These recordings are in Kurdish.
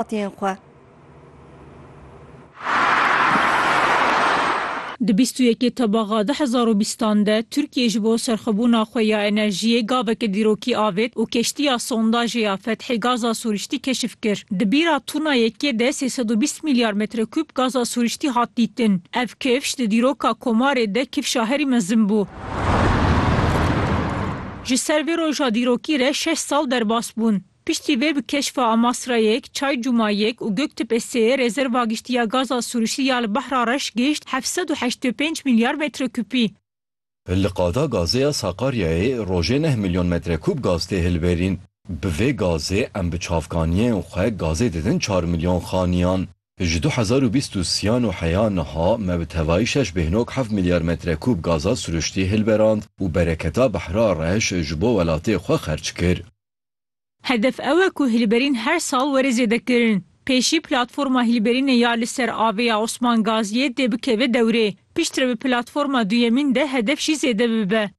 hatiyên xwe. Di bîst û yekê Tebaxa du hezar û bîstan de Tirkiyê ji bo serxwebûna xwe ya enerjiyê gaveke dîrokî avêt û keştiya sondajê ya Fethê gaza sûriştî keşif kir. Di bîra tûna yekê de sê sed û bîst milyar metrekûb gaza sûriştî hat dîtin. Ev kifş di dîroka komarê de kifşa herî mezin bû. Ji ser vê roja dîrokî re şeş sal derbas bûn. Piştî vê bi keşfa Amasrayek, Çay Cumayek û Göktepê Sê rezerva giştî ya gaza sûrişî ya li Behra Reş gişt heft sed û heştê û pênc milyar metrekûpî. Li qada gazê ya Sakaryayê rojê neh milyon metrekûp gaz tê hilberîn. Bi vê gazê em bi çavkaniyên xwe gazê didin çar milyon xaniyan. Ji du hezar û bîst û siyan û heya niha me bi tevayî şeş bêhnog heft milyar metrekûp gaza sûriştî hilberand û bereketa Behra Reş ji bo welatê xwe xerc kir. Hedef ew e ku hilberîn her sal were zêdekirin. Pêşî platforma hilberînê ya li ser avê ya Osman Gaziyê dê bikeve dewrê. Pişt re bi platforma duyemîn de hedef jî zêde bibe.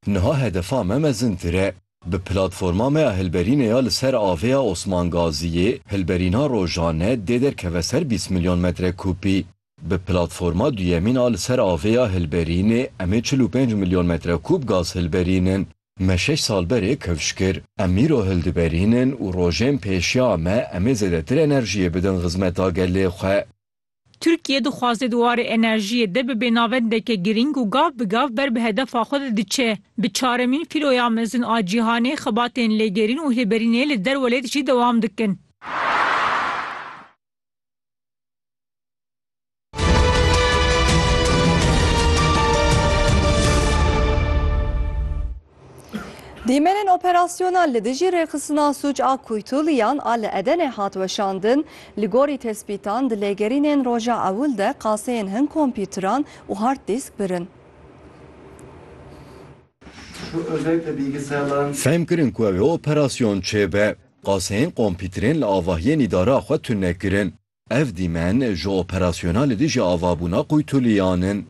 Niha hedefa me mezintir e. Bi platforma me ya hilberînê ya li ser avê ya Osman Gaziyê, hilberîna rojane dê derkeve ser bîst milyon metrekûpî. Bi platforma duyemîn a li ser avê ya hilberînê em ê çil û pênc milyon metrekûb gaz hilberînin. Me şeş sal berê kevş kir. Em îro hildiberînin û rojên pêşiya me em ê zêdetir enerjiyê bidin xizmeta gelê xwe. Tirkiye dixwaze di warê enerjiyê de bibe navendeke girîng û gav bi gav ber bi hedefa xwe de diçe. Bi çaremîn fîloya mezin a cîhanê xebatên lêgerîn û hilberînê li derwelêt jî dewam dikin. Dîmenên operasyona li dijî rêxistina sûc a kuytuliyan a li Edenê hat weşandin, li gorî tespîtan di lêgerînên roja ewil de qaseyên hin kompîtran û hard dîsk birin. Fehm kirin ku ew ê operasyon çêbe. Qaseyên kompîtrên li avahiyên îdara xwe tune kirin. Ev dîmen ji operasyona li dijî avabûna Quytuliyan in.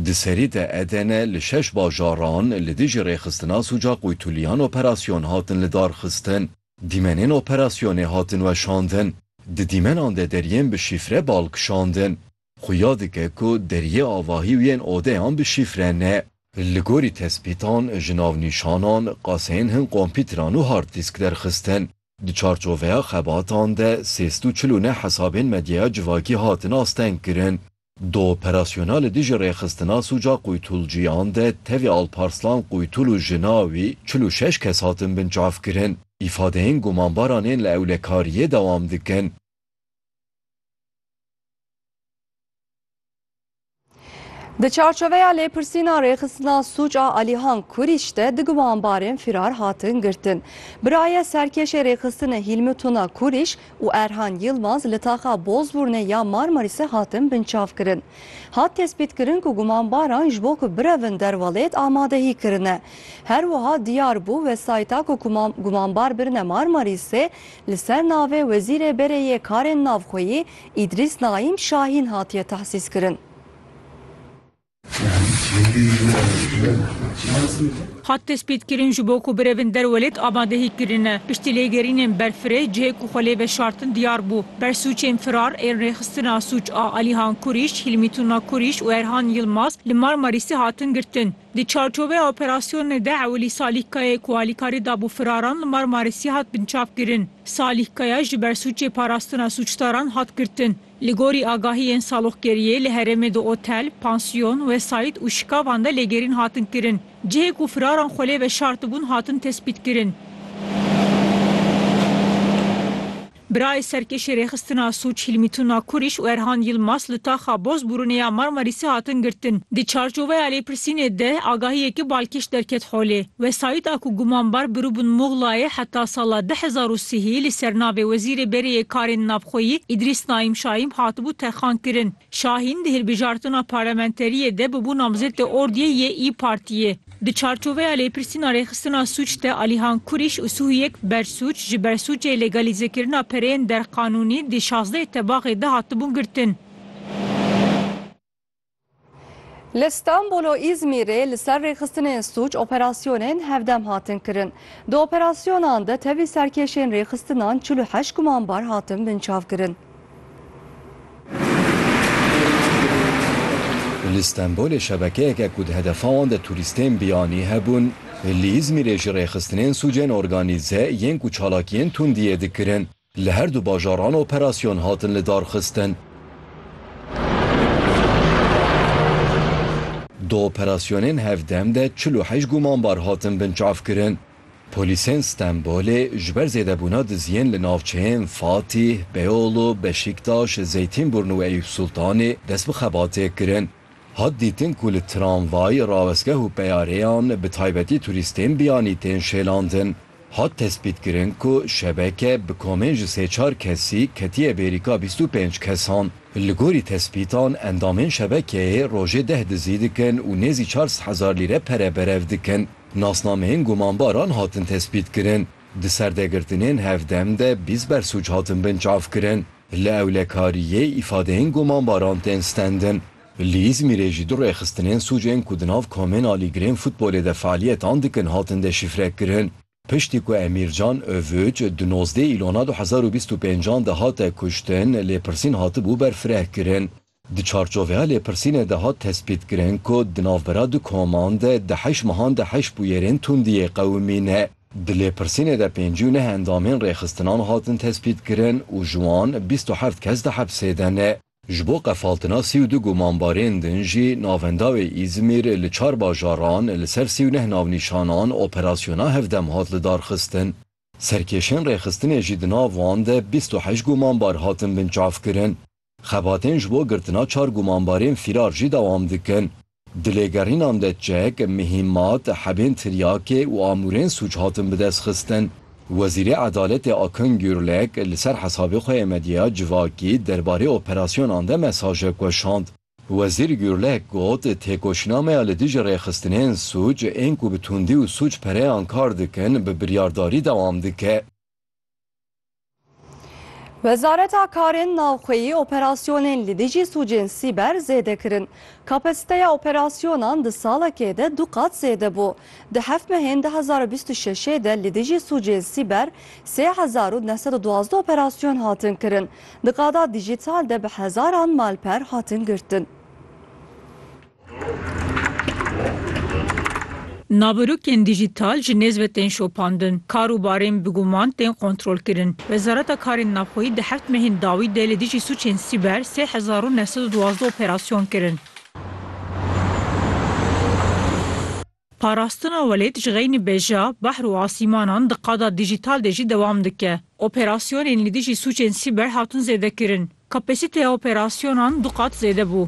Di serî de Eden li şeş bajaran li dijî rêxistina sûca Quytuliyan operasyon hatin lidarxistin. Dîmenên operasyonê hatin weşandin. Di dîmenan de deriyên bi şîfre bal kişandin. Xuya dike ku deriyê avahî û yên odeyan bi şîfre ne. Li gorî tespîtan ji navnîşanan, qaseyên hin kompîtran û hard dîsk derxistin. Di çarçoveya xebatan de sê sed û çil û neh hesabên medyaya civakî hatin astengkirin. Di operasyona li dijî rêxistina sûca qoytulciyan de tevî Alparslan Qoytul û jina wî çil û şeş kes hatin binçavkirin. Îfadeyên gumanbaran ên li ewlekariyê dewam dikin. Di çarçoveya lêpirsîna rêxistina sûc a Alihan Kurîç de di gumanbarên fîrar hatin girtin. Birayê serkêşê rêxistinê Hîlmi Tuna Kurîç û Erhan Yilmaz li taxa Bozbûrnê ya Marmarîsê hatin binçavkirin. Hat tespîtkirin ku gumanbaran ji bo ku birevin derwelêt amadehî kirine. Her wiha diyar bû wesayîta ku gumanbar birine Marmarîsê Li ser navê Wezîrê Berê yê Karên Navxweyî Îdrîs Naîm Şahîn hatiye tehsîskirin. Hat destpêkirin ji bo ku birevin derwelêt amadehî kirine. Piştî lêgerînên berfirê cihê ku xwe lê veşartin diyar bû. Ber sûcên firar ên rêxistina sûc a Alihan Kurîş, Hîlmî Tuna Kurîş û Erhan Yilmaz li Marmarîsê hatin girtin. Di çarçoveya operasyonê de ewilî Salîh Kayayê ku alîkarî dabû firaran li Marmarîsê hat binçavkirin. Salîh Kaya ji ber sûcê parastina sûcdaran hat girtin. Li gorî agahiyên saloqgeriyê li herêmê di otel, pansiyon, wesayît û şikavan de lêgerîn hatin kirin. Cihê ku firaran xwe lê veşartibûn hatin tespîtkirin. Birayê serkêşê Rêxistina Sûc Hîlmî Tuna Kurîş û Erhan Yilmaz li taxa boz bûrûnê ya Marmarîsê hatin girtin. Di çarçoveya lêpirsînê de agahiyeke balkêş derket holê. Wesayîda ku gumanbar Birûbin Muxlayê heta sala du hezar û sihî li ser navê Wezîrê Berê yê Karên Navxweyî Îdrîs Naîm Şaîm hatibû terxankirin, Şahîn di hilbijartina parlementeriyê de bûbû namzetê ordiyê yê îyi Partiyê. Di çarçoveya lêpirsîna rêxistina sûc de Alîhan Kurîş û Suhuyek Bersûc ji ber sûcê lêgalîzekirina pereyên derqanûnî di şazdeyê tebaxê de hatibûn girtin. Li Stenbol û Îzmîrê li ser rêxistinên sûc operasyonên hevdem hatin kirin. Di operasyonan de tevî serkêşên rêxistinan çil û heşt gumanbar hatin binçavkirin. Li Stenbolê şebekeyeke ku di hedefa wan de turîstên biyanî hebûn, li Îzmîrê jî rêxistinên sûcên organîze yên ku çalakiyên tundiyê dikirin li her du bajaran operasyon hatin lidarxistin. Di operasyonên hevdem de çil û heşt gumanbar hatin binçavkirin. Polîsên Stenbolê ji ber zêdebûna diziyên li navçeyên Fatîh, Beyoğlu, Beşîktaş, Zeytînburn û Eyûpsultanê dest bi xebatê kirin. Hat dîtin ku li tramvay, rawestgeh û peyareyan bi taybetî turîstên biyanî tên şêlandin. Hat tespîtkirin ku şebeke bi komên ji sê çar kesî ketiye bêrîka bîst û pênc kesan. Li gorî tespîtan endamên şebekeyê rojê deh dizî dikin û nêzî çar sed hezar lîre pere berev dikin. Nasnameyên gumanbaran hatin tespîtkirin. Di serdegirtinên hevdem de bîst bersûc hatin binçavkirin. Li ewlekariyê îfadeyên gumanbaran tên stendin. Li Îzmîrê jî du rêxistinên sûcên ku di nav komên alîgirên futbolê de fealiyetan dikin hatin deşîfrekirin. Piştî ku Emîr Can Övüç di nozdeh Îlona du hezar û bîst û pênc an de hate kuştin, lêpirsîn hatibû berfirehkirin. Di çarçoveya lêpirsînê de hat tespîtkirin ku di navbera du koman de di heşt mehan de heşt bûyerên tundiyê qewimî ne. Di lêpirsînê de pêncî û neh endamên rêxistinan hatin tespîtkirin û ji wan bîst û heft kes di hepsê de ne. Ji bo qefaltina sî û du gumanbarên din jî navenda wê Îzmîr li çar bajaran li ser sî û neh navnîşanan operasyona hevdem hat lidarxistin. Serkêşên rêxistinê jî di nav wan de bîst û heşt gumanbar hatin binçavkirin. Xebatên ji bo girtina çar gumanbarên fîrar jî dewam dikin. Di lêgerînan de çek, mihîmat, hebên tiryakê û amûrên sûc hatin bidestxistin. Wezîrê Edaletê Akın Gürlek li ser hesabê xwe yê medyeya civakî derbarê operasyonan de mesajek weşand. Wezîr Gurlek got, Têkoşînameya li dijî rêxistinên sûc, ên ku bi tundî û sûc pereyan kar dikin, bi biryardarî dewam dike. Wezareta Karên Navxweyî operasyonên li dijî sûcên sîber zêde kirin. Kapasîteya operasyonan di salekê de du qat zêde bû. Di heft mehên du hezar û bîst û şeşê de li dijî sûcên sîber sê hezar û neh sed û duwazdeh operasyon hatin kirin. Di qada dîjîtal de bi hezaran malper hatin girtin. Naverokên dîjîtal ji nêz ve tên şopandin, kar û barên bi guman tên kontrolkirin. Wezareta Karên Navxweyî di heft mehên dawî de li dijî sûcên sîber sê hezar û neh sed û duwazdeh operasyon kirin. Parastina welêt ji xeynî beja, behr û asîmanan di qada dîjîtal de jî dewam dike. Operasyonên li dijî sûcên sîber hatin zêdekirin. Kapasîteya operasyonan du qat zêde bû.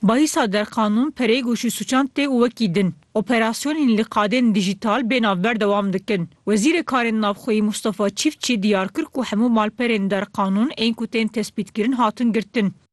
Bahisa derqanûn, pereyg û şûsûçan tê û wekî din. Operasyonên li qadên dîjîtal bê navber dewam dikin. Wezîrê Karên Navxweyî Mustafa Çîftçî diyar kir ku hemû malperên derqanûn ên ku tên tespîtkirin hatin girtin.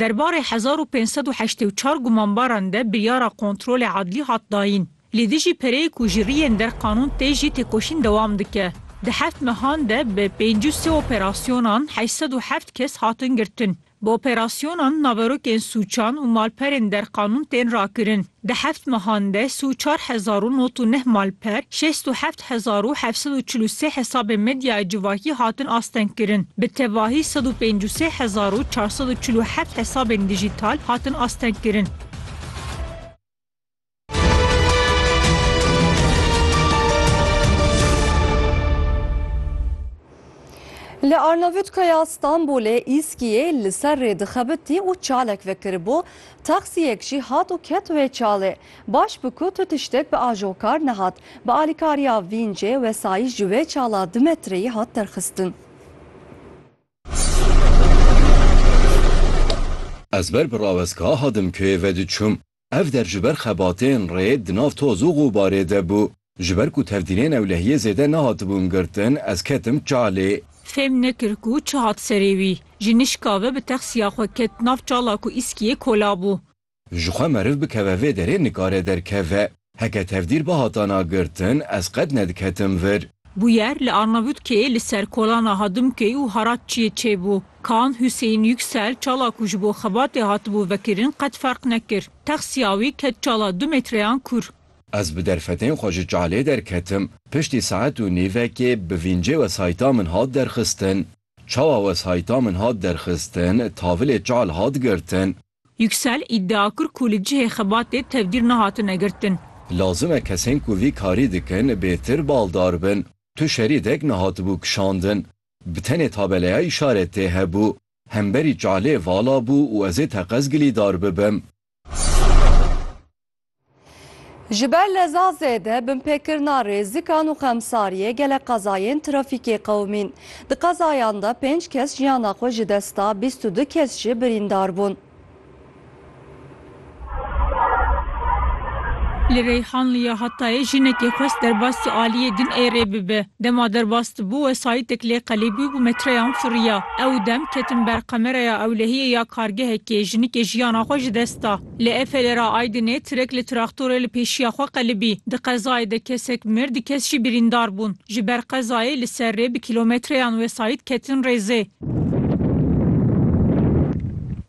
Derbarê hezar û pênc sed û heştê û çar gumanbaran de biryara kontrolê adlî hat dayîn. Li dijî pereyê ku ji riyên der qanûn tê jî têkoşîn dewam dike. Di heft mehan de bi pêncî û sê operasyonan heşt sed û heft kes hatin girtin. Bi operasyonan naverokên sûçan û malperên derqanûn tên rakirin. Di heft mehan de si û çar hezar û nod û neh malper, şêst û heft hezar û heft sed û çil û sê hesabên medyaya civakî hatin astengkirin. Bi tevahî sed û pênc û sê hezar û çar sed û çil û heft hesabên dijîtal hatin astengkirin. Li Arnavutkaya Stenbolê Îskiyê li ser rê dixebitî û çalek vekiribû, Taksiyek jî hat û ket wê çalê. Baş bi ku tu tiştek bi ajo kar nehat. Bi alîkariya vîncê, wesayîş ji wê çala du metreyî hat derxistin. Ez ber bi rawezka hadim keyê ve diçûm. Ev der ji ber xebatên rê di nav toz û xûbarê de bû. Ji ber ku tevdînên ewlehiyê zêde nehatibûn girtin, ez ketim çalê. Fêm nekir ku çi hat serê wî. Ji nişka ve bi texsiya xwe ket nav çala ku îskiyê kola bû. Ji xwe meriv bikeve vê derê nikare derkeve. Heke tevdîr bihatana girtin, ez qet nediketim vir. Bûyer li Arnavutkeyê li ser kolana Hadimköy û Haratçiyê çêbû. Kan Huseyîn Yuksel çala ku ji bo xebatê hatibû vekirin qet ferq nekir. Texsiya wî ket çala du metreyan kûr. Ez bi derfetên xwe ji çalê derketim. Piştî saet û nîvekê bi vîncê wesayîta min hat derxistin. Çawa wesayîta min hat derxistin, tavilê çal hat girtin. Yuksel, îdia kir ku li cihê xebatê tevdîr nehatine girtin. Lazim e kesên ku vî karî dikin bêtir baldar bin. Tu şerîdek nehatibû kişandin. Bi tenê tabeleya îşaretê hebû. Hemberî çalê vala bû û ez ê teqez gilîdar bibim. Ji ber leza zêde binpêkirina rêzikan û xemsariyê gelek qezayên trafîkê qewimîn. Di qezayan de pênc kes jiyana xwe ji dest da, bîst û du kes jî birîndar bûn. Li Reyhanlî ya Hatayê jinekê xwest derbas di aliyê din ê rê bibe. Dema derbas dibû, wesayîtek lê qelîbû û metreyan firiya. Ew dem ketin ber qemereya ewlehiyê ya kargehekê, jinikê jiyana xwe ji dest da. Li Efelê re Aydinê tirek li traktorê li pêşiya xwe qelibî. Di qezayê de kesek mir, du kes jî birîndar bûn. Ji ber qezayê li ser rê bi kîlometreyan wesayît ketin rêzê.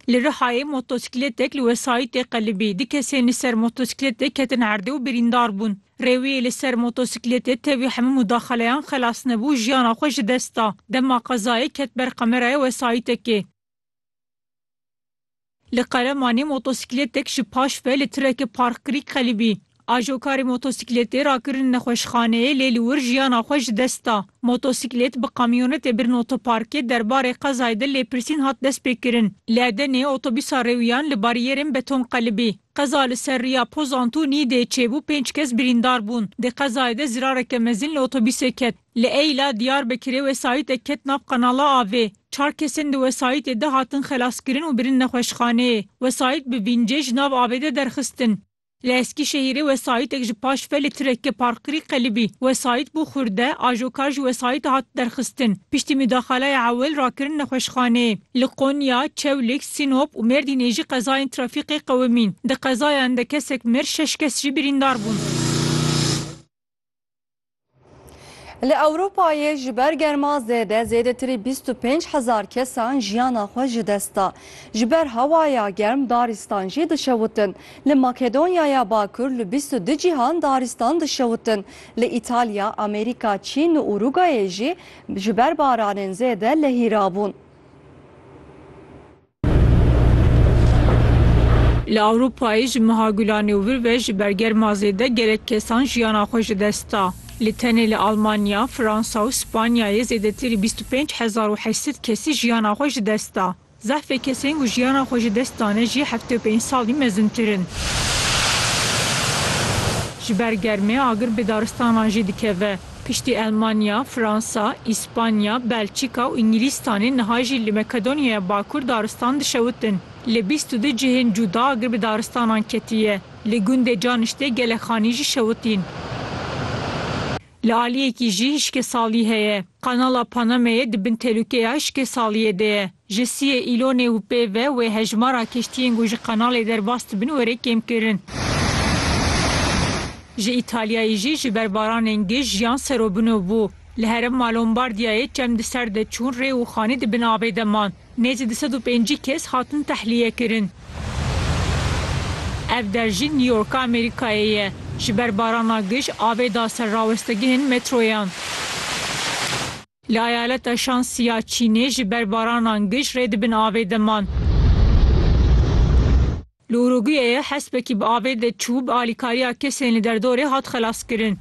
Li Rihayê motosiklêtek li wesayîtê qelibî. Du kesên li ser motosiklêtê ketin erdê û birîndar bûn. Rê wî li ser motosiklêtê tevî hemû mudaxeleyan xelas nebû, jiyana xwe ji dest da. Dema qezayê ket ber kameraya wesayîtekê. Li Qeremanê motosiklêtek ji paş ve li tireke parkkirî qelibî. Ajokarê motosiklêtê rakirin nexweşxaneyê lê li wir jiyana xwe ji dest da. Motosiklêt bi kamyonetê birin otoparkê derbarê qezayê de lêpirsîn hat destpêkirin. Li Edeneyê otobûsa rêwiyan li barîyerên beton qelibî. Qeza li ser rêya Pozantûnî dê çêbû pênc kes birîndar bûn. Di qezayê de zirareke mezin li otobîsê ket. Li Eyl'a Diyarbekirê wesayîtek ket nav qanala avê. Çar kesên di wesayîtê de hatin xelaskirin û birin nexweşxaneyê. Wesayît bi vîncê ji nav avê de derxistin. Li Eskîşehîrê wesayîtek ji paş ve li tireke parkirî qelibî. Wesayît bû xurde, ajokar ji wesayîtê hat derxistin. Piştî midaxaleyê ewil rakirin nexweşxaneyê. Li Konya, Çewlik, Sinop û Mêrdînê jî qezayên trafîkê qewimîn. Di qezayan de kesek mir, şeş kes jî birîndar bûn. Li Ewropayê ji ber germa zêde zêdetirî bîst û pênc hezar kesan jiyana xwe ji dest da. Ji ber hewaya germ darîstan jî dişewitin. Li Makedonyaya Bakur li bîst û du cîhan darîstan dişewitin. Li Îtalya, Amerîka, Çîn û Urugayê jî ji ber baranên zêde lehîrabûn. Li Ewropayê ji meha Gulanê û vir ve ji ber germa zêde gelek kesan jiyana xwe ji dest da. Lê tenê li Almanya, Fransa û Spanyayê zêdetir ê bîst û pênc hezar û heşt sed kesî jiyana xwe ji dest da. Zehfê kesên ku jiyana xwe ji dest dane jî heftê û pênc salî mezintir in. Ji ber germê agir bi daristanan jî dikeve. Piştî Elmanya, Fransa, Îspanya, Belçîka û Îngilîstanê niha jî li Makedonyaya Bakur daristan dişewitin. Li bîst û du cihên cuda agir bi daristanan ketiye. Li gundê Caniştê gelek xanî jî şewitîn. Li aliyekî jî hişkesalî heye. Kanala Panameyê di bin telûkeya hişkesaliyê de ye. Ji siyê Îlonê û pê ve wê hejmara kiştiyên ku ji kanalê derbas dibin were kêmkirin. Ji Îtalyayê jî ji ber baranên gij jiyan serobino bû. Li herêma Lombardiyayê çem di ser de çûn rê û xanî di bin avê de man. Nêzî du sed û pêncî kes hatin tehliyekirin. Ev der jî New Yorka Amerîkayê ye. Ji ber barana gij avê da ser rawestegihên metroyan. Li eyaleta Shansi ya Çînê ji ber baranan gij rê di bin avê de man. Li Uruguyeyê hespekî bi avê de çû bi alîkariya kesên li derdorê hat xelaskirin.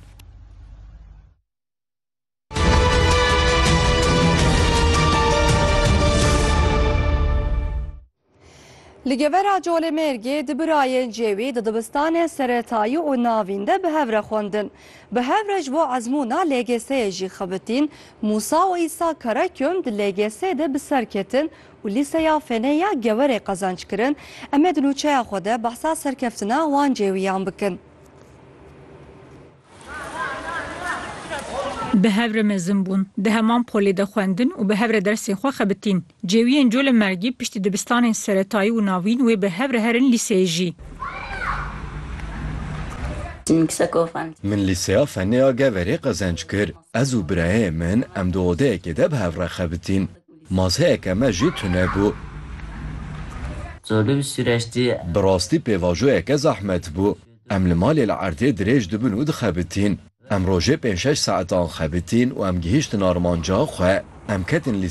Li gevera Colemêrgê di birayên cêwî di dibistanên seretayî û navîn de bi hev re xwendin. Bi hev re ji bo ezmûna LGS'yê jî xebitîn. Mûsa û Îsa Karaköm di LGS de bi ser ketin û Lîseya Fenê ya Gewerê qezanc kirin. Em ê di nûçeya xwe de behsa serkeftina wan cêwîyan bikin. Bi hev re mezin bûn. Di heman polê de xwendin û bi hev re dersên xwe xebitîn. Cêwiyên Colemêrgî piştî dibistanên seretayî û navîn wê bi hev re herin lîseyê jî. Min lîseya Fennê ya Geverê qezenc kir. Ez û birayê min em di odeyekê de bi hev re xebitîn. Mazeyeke me jî tune bû. Bi rastî pêvajoyeke zehmet bû. Em li malê li erdê dirêj dibin û dixebitîn. Em rojê pênc şeş saetan xebitîn û em gihîştin armanca xwe. Em ketin lî.